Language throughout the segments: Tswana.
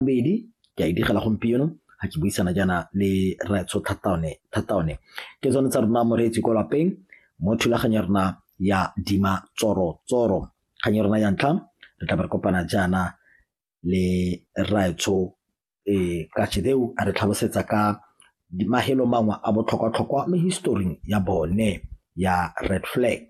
Bobedi, ke a e direla gompieno ga ke buisana jaana le Rraetsho Thataone. Thataone ke tsone tsa rona moreetsi ko lapeng mo thulaganyo ya rona ya Dima Tsoro Tsoro. Kgang ya rona ya ntlha re tla be re kopana jaana le Rraetsho um ka Chideu a re tlhalosetsa ka mahelo mangwe a botlhokwa-tlhokwa mo historing ya bone ya Red Flag.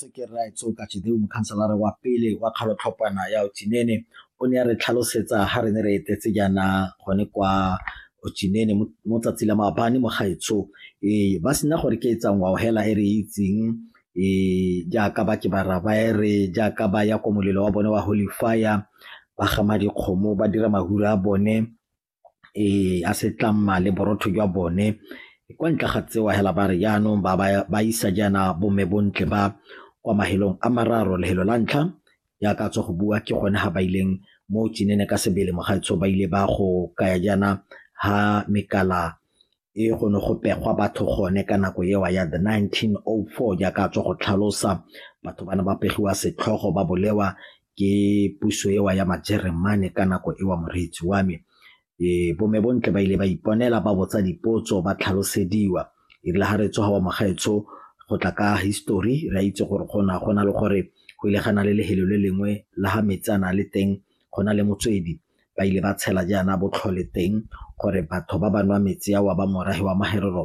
Sekere Raetsoka Chideu mokhanselara wa pele wa kgalotlhopana ya Otsinene o ne a re tlhalosetsa ha re ne re etetse jaana gone kwa Otsinene mo tsatsi la maabane mo gaetsho ee ba sena gore ke etsang wa hela e re itseng ee jaaka ba ke bara ba e re jaaka ba ya kwa molelo wa bone wa holy fire ba gama dikgomo ba dira mahura a bone ya setlamma le borotho jwa bone kwa ntle ga tseo hela ba re jaanong ba ba isa jaana bomme bontle ba kwa mahelong a mararo lehelo la ntlha ya ka tswa go bua ke gone ga ba ileng mo tsenene ka sebele mogaetsho ba ile ba go kaya jaana ha mekala e go ne go pegwa batho gone ka nako eo ya the 1904 jaaka a tswa go tlhalosa batho ba ne ba pegiwa setlhogo ba bolewa ke puso eo ya majeremane ka nako eo moreetsi wa me e bome bontle ba ile ba iponela ba botsa dipotso ba tlhalosediwa e rile ga re tsoga wa mogaetsho go tla ka history re a itse gore gona go na le gore go ile gana le lehelo le lengwe la ga metsana le teng go na le motswedi ba ile ba tshela jaana botlhole teng gore batho ba ba nwa metsi ao a ba morafe wa magerelo